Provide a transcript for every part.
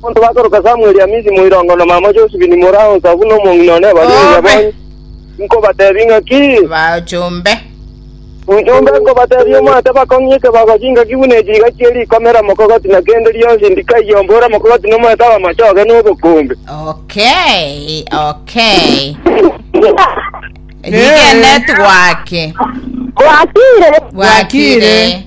Bono bakoroka Samweli Amisi moirongo na mama Josephine mora onsa buna omong'ina one baria Obe. Onyabonyi, nkobatebie ng'aki, Bachombe. Ojombe nkobatebia omwate bakong'ie ekebago chingaki buna echi iga chie rikomera mokogoti na kende rionsi ndikaiye ombore mokogoti na omwete bw'amachoge na obokombe. Okay, okay. Rigene twake. Gwakire. Bwakire.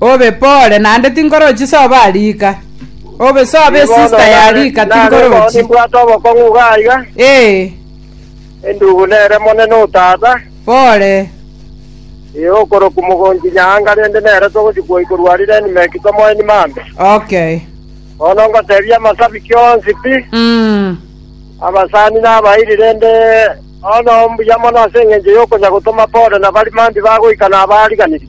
Obe pore, naende tinkorochi sobo a riika. Obe sobo esista ya riika, tinkorochi. Nimbwate obokong'u iga aiga. Ee. Endugu nere monene o tata. Pore. Ee, okorokwa mogonchi nyaanga, rende nere togochi kwoi korwa aria Elimeleki tomoeni Mamre. Okay. Bono ngotebia amasabiki onsi pi, Mm. abasani na abairi, rende bono mbuya mono ase engencho y'okonya gotoma pore na bari mambia bagoika na abaariganirie.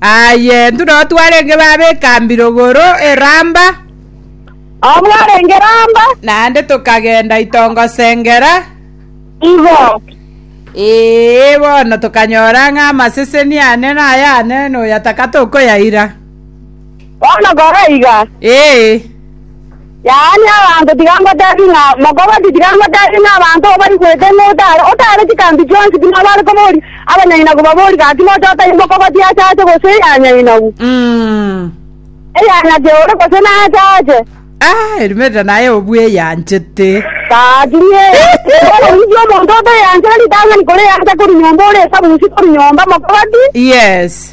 Aye, intwe nabo twarenge babe ekambi rogoro e Ramba. Aba mwarenge Ramba. Naende tokagenda itongosengera. Igo. Ee, bono tokanyora ng'a amaseseni ane nayane, noyataka tokoyaira. Bono kora iga. Ee. Yaani abanto tiga ngotebi ng'a mokobati tiga ngotebi ng'a abanto oo baigwete ng'a otare otare chikambi chionsi buna bare kobori abanyainagu babori gaki noche otai mokobati ache ache gose eyanyainagu Mm. eyanyake ore gose nache ache Ah, erimeta naye obweyanchete. gaki nie bono ninki omonto oteyanchera ritang'ani kore yancha kori nyomba ore esabusi kori nyomba mokobati Yes.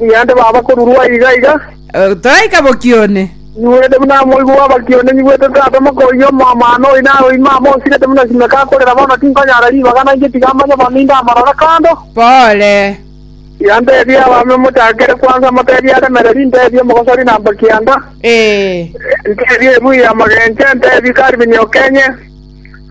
Nigende baba korurwa aiga aiga. Toraika bokia one. Nyigwete buna moigwa bw'abakia one nyigwete tata mokoyia omwamano oyo naye oima amo osirete buna simeka akorera bono tinkonyara ribaga nainche tiga amanye bono ninde amarore kando. Pole. Yantebie abame mochakere kwansa motebie aremereri ntebie omogosori namba kianda. Ee. Ntebie ebuya amagenche ntebie karibini okenye.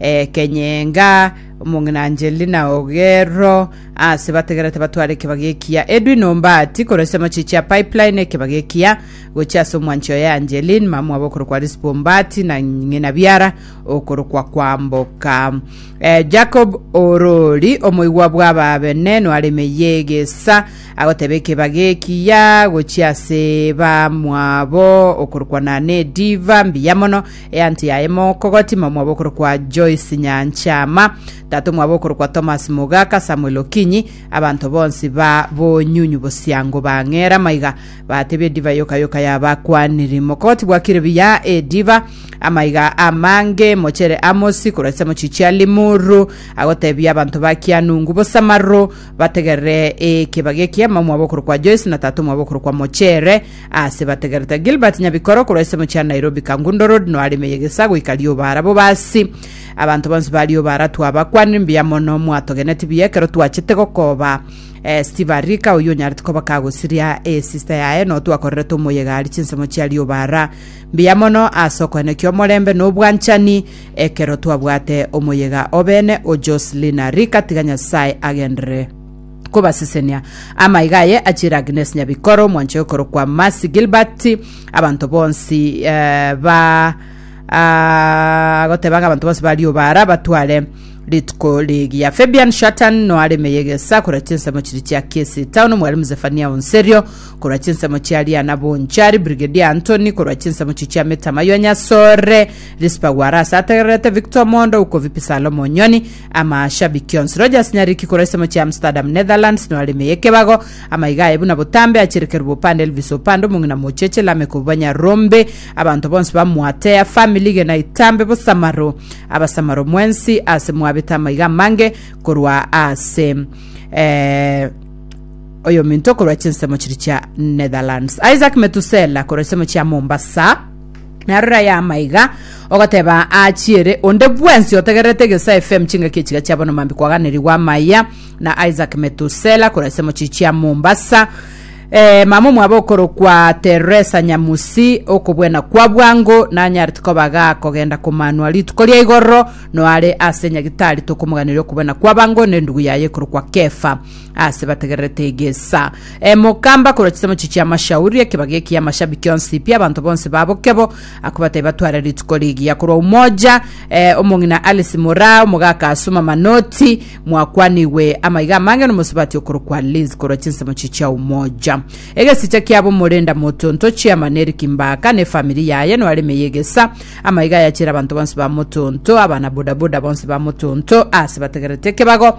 Ekeny'enga, omong'ina Angelina Oguero ase bategerete batware ekebago ekiya. Edwin Ombati korwa ase amachichi a Pipeline ekebago ekiya gochia ase omwanchi oye Angeline mamwabo okorokwa Rispa Ombati na ng'ina Biara okorokwa Kwamboka. Eh, Jacob Orori omoigwa bw'ababene nware emeyia egesa agoteba ekebago ekiya gochia ase bamwabo okorokwa Nane Diva mbiya mono Eanti yaye mokogoti mama mwabo okorokwa Joyce Nyanchama, tata omwabo okorokwa Thomas Mogaka, Samuel Okinyi, abanto bonsi ba bonyunyu bosiango bang'era amaiga, batebia ediva yoka yoka y'abakwaniri. Mokogoti bwakire buya ediva, amaiga amange, mochere amosi korwa chisamochi chia limuru, agotebia abanto ba Kianungu bosamaru bategerere ekebagia ekiya mama mwabo okorokwa Joyce na tata omwabo okorokwa Mochere, Aase bategerete Gilbert Nyabikoro korwa ensemo chia Nairobi Kangundo Road no areme yegesa goika rioba arabo basi. Abanto bonsi ba rioba ara twabakwanire mbuya mono mwatogeneti buya ekero twachete gokoba eh, Steve Arika oyio onyarete koba kagosiria eh, sister yaye no twakorerete omoyega ari chinsemo chia rioba ara mbuya mono ase okoenekia omorembe no obwanchani ekero twabwate omoyega obene o Jocelyn Arika tiga Nyasaye agenderere kobasesenia. Amaiga aye achiire Agnes Nyabikoro, omwanchori okorokwa Mercy Gilbert, abanto bonsi eh, ba ah, agoteba ng'a abanto bonsi ba rioba ara batware rituko rigiya. Fabian Shatan noa areme yegesa korwa chinsemo chiri chia Kisii Town, Mwalimu Zefania Onserio korwa chinsemo chia Riana Bonchari, Brigadier Anthony korwa chinsemo chi chia Metamaywa Nyasore, Rispa Gwarasa ategererete Victor Mondo, Ukovipi Salomo Nyoni, Amashabiki onsi Roger Asinyariki korwa ensemo chia Amsterdam, Netherlands, no aremeye ekebago. Amaiga aye buna botambe acherekerwe bopande Elvis Opande omong'ina mocheche Lameck Obubanya Rombe. Abanto bonsi ba Mwatea family gena itambe bosamaro. Abasamaro mwensi ase mwabete amaiga amange korwa ase eh, oyominto korwa chinsemo chiri chia Netherlands. Isaac Metusela korwa ensemo chia Mombasa. Na rora yama iga, ogoteba achiere onde bwensi otegererete Egesae FM chingaki echiga chia bono mambi kwaganerigwa amaya na Isaac Metusela korwa ase mochie chia Mombasa. Eh, mama omwabo okorokwa Teresa Nyamusi okobwena kwa bwango nanyarete koba ga kogenda komanwa rituko ria igoro noare ase nyagitari tokomoganeria okobwena kwa bango na endugu yaye ekorokwa Kefa. ase bategererete egesa emoka mbakora chisamochi chia amashauri ekebaga eki y'amashabiki onsi pi abanto bonsi babo kebo akobatai batware rituko rigiya korwa umoja eh, omong'ina alice mora omogaka asuma manoti mwakwanigwe amaiga amange nomosubati okorokwa liz korwa chinsamochi chia umoja egesicha kiabo morenda motonto chairman eric mbaka ne famiri yaye noaremeye egesa amaiga yachere abanto bonsi ba motonto abana bodaboda bonsi ba motonto ase bategererete ekebago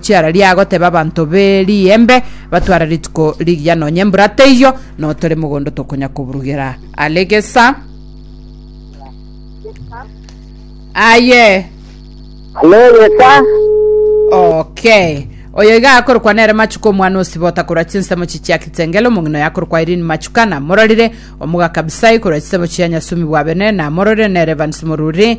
chiara riagoteba abanto be riembe batware rituko rigiya nonye embura teiyo no tore mogondo tokonya koburugera are gesa aye Alegesa, okay oyo iga akorokwa nere machuka omwana osibota korwa chinsemo chichia kitengele omong'ina oyo akorokwa irini machuka namororire omogaka abisai korwa chisemo chia nyasumi bwa bene namororire nere evans moruri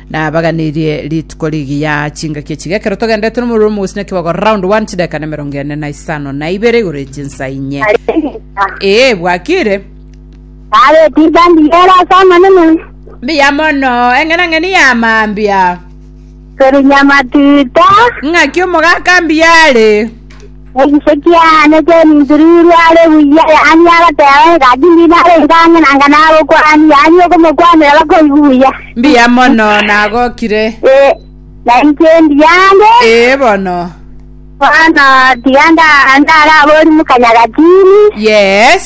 Nabaganirie rituko rigiya chingaki echi gekero togendete nomorero omogusina kibogo round 1 chideka na emerongo ene na isano na ibere igoro echinsa inye. Ee bwakire. Kare tiga ndiyera sana nene. Mbiya mono eng'ena ng'eni ya mambia. Keri nyamatita. Ng'aki omogaka mbiyare. Nechisetie aane chi'eminturirwe are buya, yaani agateba, Egati ndinare engaang'e na ngano agokwani, yaani okomokwanera bakoigwe buya. Mbuya mono nagokire. Ee, na inche ndiyange. Ee bono. Bono tiga nda- ndaraborie mokanyaga tini. Yes.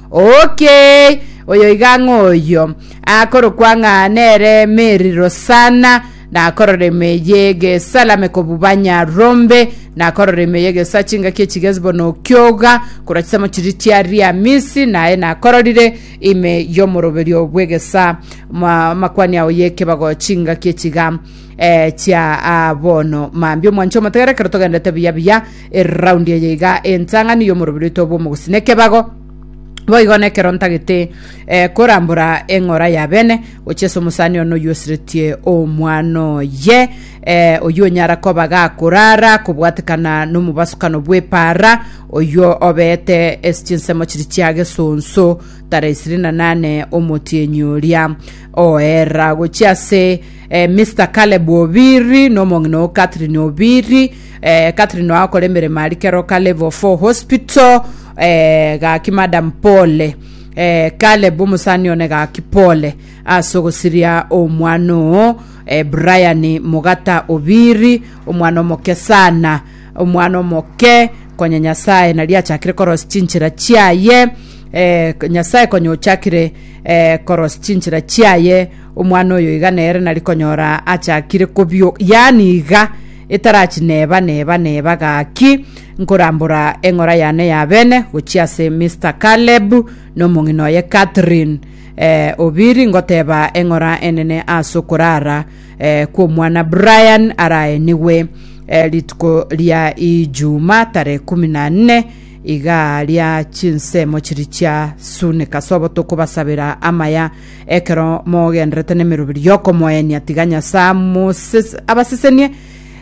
Okay, oyo iga ng'oyio akorokwa ng'a nere Mary Rosana, nakorora emei y'egesalame kobuba Nyarombe, nakorora emei y'egesoa chingaki echigezi bono okioga, korwa chisemo chiria chia Riamisi, naye nakororire ime y'omoroberio bw'egesaa ma- makwani ao y'ekebago chingaki echiga eh, chia ah, bono mambia omwancho omotegere ekero togendete buya buya Eroundi eye iga entang'ani y'omorobio rito bw'omogusina ekebago boigo nekero ntagete eh, korambora eng'ora ya bene gochia ase omosani ono oyio osiretie omwana oye eh, oyio onyara koba gakorara kobwatekana nomobasukano bw'epara oyio obeete ase chinsemo chiri chia gesonso tara isiri na nane omotienyi oria oera gochia ase eh, Mr. Caleb Obiri n'omong'ina o Catherine Obiri Eh, Catherine wakora emeremo ari kero ka level 4 hospital eh, gaki madam pole eh, Caleb omusani one gaki pole ase ogosiria omwana oo eh, Brian Mugata Obiri omwana omoke sana omwana omoke konya Nyasaye nari achakire korosi chinchera chiaye eh, Nyasaye konya ochakire eh, korosi chinchera chiaye omwana oyo iga nere nari konyora achakire kobio yani iga Etarachi neba neba neba gaki nkorambora eng'ora yane ya bene gochia ase Mister Caleb na omong'ina oye Catherine eh, Obiri ngoteba eng'ora enene ase okorara eh, kw'omwana Brian araenigwe eh, rituko ria Ijuma tare kumi na nne iga ria chinsemo chiri chia Sune Kasobo tokobasabera amaya Ekero mogenderete nemeroberi y'okomoenia, tiga Nyasae amoses- abasesenie,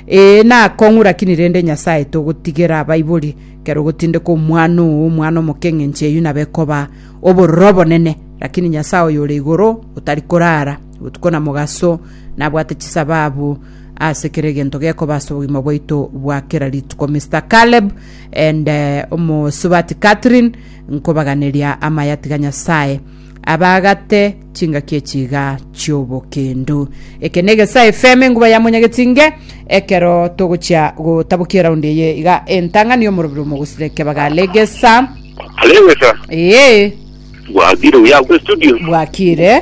ee, nakong'ura kini rende Nyasae togotigera abaibori, ekero ogotindeka omwana oo, omwana omoke eng'encho eyio nabe ekoba obororo obonene. Rakini Nyasae oyo ore igoro otari korara, botuko na mogaso, nabwate chisababu ase kera egento gekoba ase obogima bwaito bwa kera rituko. Mister Caleb and eh, omosubati Catherine, nkobaganeria amaya tiga Nyasae abaagate chingaki echi iga chi'obokendu. Eke na Egesae FM enguba ya Monyagetinge, ekero togochia gotabokia eraundi eye iga entang'ani y'omorobio omogusire kebaga Legesa. Alegesa, Ee, bwakire uya kwe studio. bwakire.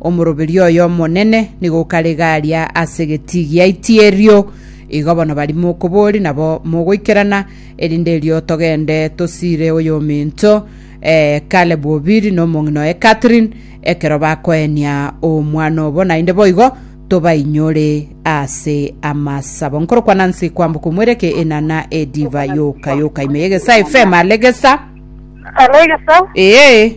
Omoroberio oye omonene nigo okarega aria ase egetii gia itierio. Igo bono bari mokobori nabo mogoikerana, erinde erio togende tosiire oyominto eh, Caleb Obiri na omong'ina oye Catherine, ekero bakoenia omwana obo, naende boigo tobainyore ase amasabo. Nkorokwa Nancy kwamboka omwereke enana ediva yoka yoka ime y'egesaa FM alegesa. Alegesa. Ee.